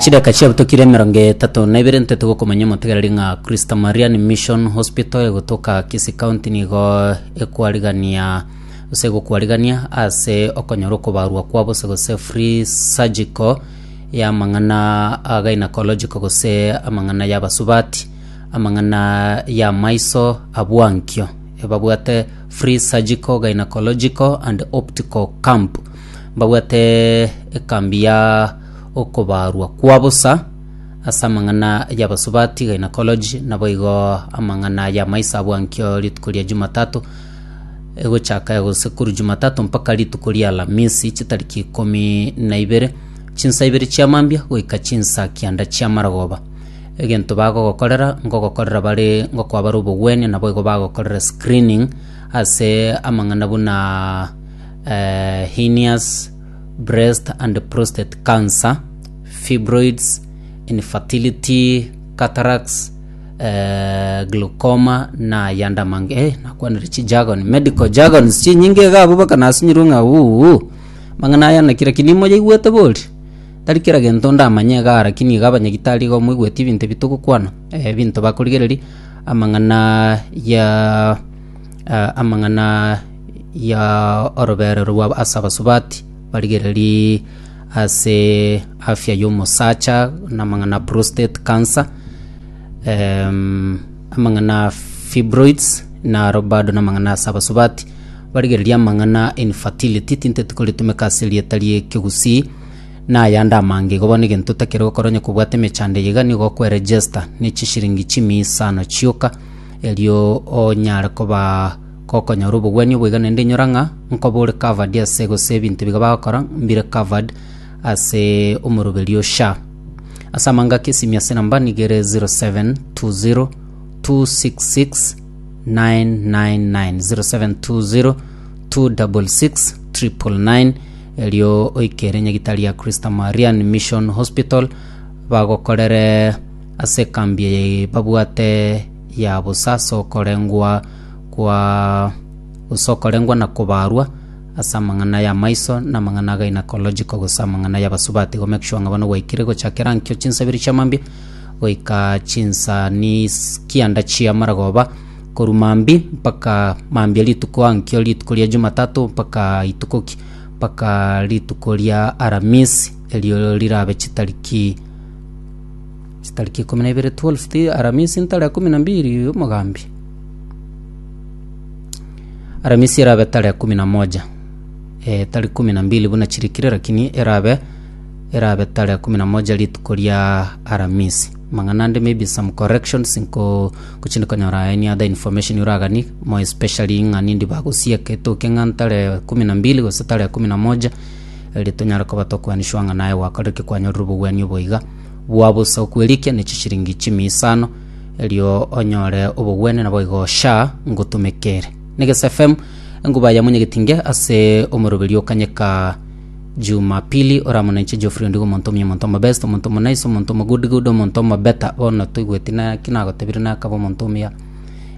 Chidaka chiabutokire emerongo etato na ibere ntete gokomanya omotegereri ng'a Christa Marian Mission Hospital egotoka Kisii County nigo ekwarigania gose egokwarigania ase okonyora okobarwa kwa bose gose free surgical ya amang'ana a gynecological gose amang'ana ya abasubati, amang'ana ya amaiso abwankio. Ebabwate free surgical, gynecological and optical camp. mbabwate ekambi ya okobaarwa kwa bosa ase amang'ana y'abasubati gynecology, naboigo amang'ana y'amaiso abwankio rituko ria Jumatatu egochaka gose korwa Jumatatu mpaka rituko ria Alamisi chitariki ikomi na ibere chinsa ibere chia mambia goika chinsa kianda chia maragoba. Egento bagogokorera ngogokorera bare ngokoa bare obogwenia naboigo bagokorera screening ase amang'ana buna hernias, breast and prostate cancer, fibroids, infertility, cataracts, eh, glaucoma na yanda mange eh, nakwanire chijagon medical jargons chinyinge iga abwo mpaka nasinyirwe ng'a uhu mang'ana aya nakira ki nimoyaigwete bori tari kera gento ndamanye igaa lakini iga abanyagitari igo moigweti ebinto ebi togokwana eh, ebinto bakorigereria amang'ana ya amang'ana ya orobeerero rwa ase abasubati, barigererie ase afya y'omosacha na amang'ana a prostate cancer, em, amang'ana a fibroids naro bado na amang'ana ase abasubati, barigererie amang'ana a infertility tinteti koritumeka ase erieta ri'ekegusii, na ayande amange igo. Bono egento otakire gokora onye kobwate emechando eye iga nigo okwe-register ne chishiringi chimiisano chioka. Erio onyare koba gokonyora obogwenia obo iga naende inyora ng'a nkoba ore covered ase gose ebinto biga bagokora mbire covered ase omoroberio oo Sha. Ase amang'ana ake esimi ase enamba nigo ere 0720 266 999 0720 266 999 erio oike ere nyagitari ya Christa Marian Mission Hospital bagokorere Ase ekambi eye babwate ya bosa ase okorengwa kwa gose okorengwa na kobarwa ase amang'ana ya maiso na amang'ana a gynecological gose amang'ana ya basubati go make sure ng'a bono gwaikire gochakera nkio chinsa ibere chia mambia goika chinsa ni is- kianda chia maragoba korwa mambi mpaka mambia rituko aa nkio rituko ria jumatatu mpaka rituko ki mpaka rituko ria aramisi erio rirabe chitariki Chitariki ikomi na ibere twelfth Aramisi ntare ya ikomi na mbiri omogambi. Aramisi erabe tare ya ikomi na moja eh, tari ikomi na mbili buna chirikire lakini erabe erabe tare ya ikomi na moja rituko ria Aramisi mang'ana ande maybe some corrections nko kuchindi konyora any other information uragani more especially ng'a nindi bagosieka etoke ng'a ntare ya ikomi na mbili gose tare ya ikomi na moja eri tonyare koba tokwaniswa ng'a naye gwakorereki kwanyorire obogwenia obo iga bwa bosa okwerikia ne chishiringi chimia isano erio onyore obogwene naboigo sha ngotumekere Negesa FM enguba ya monyegetinge ase omoroberi o kanyeka Jumapili oramonenche Geoffrey Ondigo omonto omuya omonto omobest omonto omonaice omonto omogood good omonto omobeta bono toigweti naki nagotebire nakaba omonto omuya